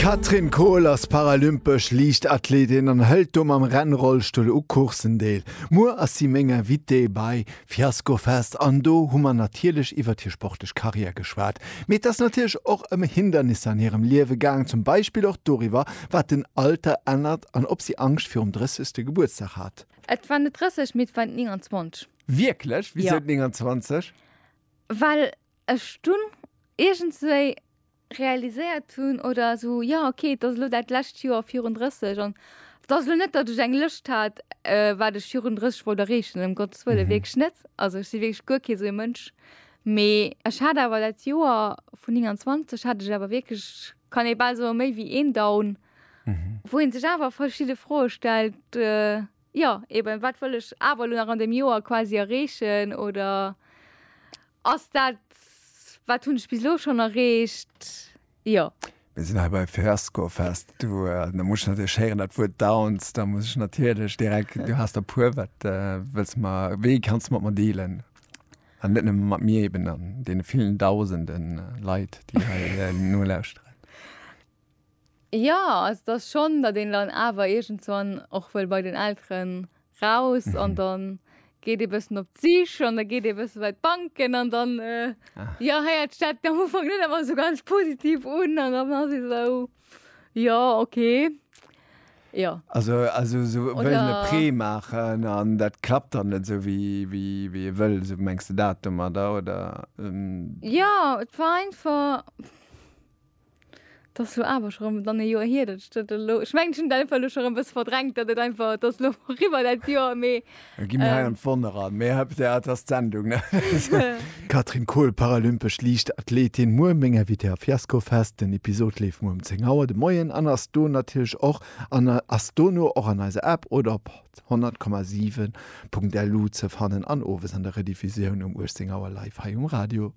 D'Catherine Kohl ass paralympesch Liichtathleetin an hëlt do mam Rennrollstull u Courssen deel. Muer ass si meng Invitée bei Fiasco Fest an do hu mer natierlech iwwert hir sportlech Karriär geschwat. Mee et ass natierlech och ëm Hindernisser an hirem Liewe gaang, zum Beispill och doriwwer, wat den Alter ännert an ob si Angscht virum 30. Gebuertsdag hat. Et war net 30, mee et war 29. Wierklech? Wisou 29? Well ech dunn iergendswéi realiséiert hunn, oder esou, jo okay, et ass elo dat lescht Joer virun 30 an et ass elo net, datt ech eng Lëscht hat, wat ech virun 30 wollt erreechen, ëm Gottes Wëlle, wierklech net. Also ech si wierklech guer kee sou ee Mënsch. Mee ech hat awer dat Joer vun 29 hat ech awer wierklech, kann ee bal soen, méi wéi een Down, wou ee sech awer verschidde Froe stellt. Jo, eben, wat wëll ech awer elo nach an deem Joer quasi erreechen oder ass dat, wat hunn ech bis elo schonn erreecht? Jo. Mir sinn hei bei Fiasco Fest. Du, da muss ech natierlech héieren, dat Wuert Downs. Da muss ech natierlech direkt, du has der puer, wat wëlls de mer, wéi kanns de mat mer dealen? An net nëmme mat mir eben, an deene villen Dausenden Leit, déi hei nolauschteren. Jo, also et ass schonn, datt een dann awer iergendswann och wëll bei den Elteren raus an dann geet ee bëssen op d'Sich an da geet ee bësse bei d'Banken an dann, jo, héiert sech dat am Ufank net ëmmer esou ganz positiv un an dann ass ee esou, jo, okay, jo. Also also esou wëllen e Prêt maachen an dat klappt dann net esou wéi wéi ee wëll, esou mengs de dat domadder, oder? Jo, et war einfach. 't ass lo awer scho rëm dann e Joer hier, datt ech dat elo, ech mengen ech hunn dat einfach elo scho rëm e bësse verdrängt, datt et einfach, et ass lo eriwwer dat Joer, mee. Da gi mir hei an d'Wonne ran, mee hei, jo, et ass d'Sendung, ne? Catherine Kohl, paralympesch Liichtathletin, muer meng Invitée a Fiasco Fest. Den Episod leeft muer um 10 Auer de Moien an ass do natierlech och an ass dono och an eiser App oder op 100,7.lu ze fannen an owes an der Rediffusioun um 18 Auer live hei um Radio.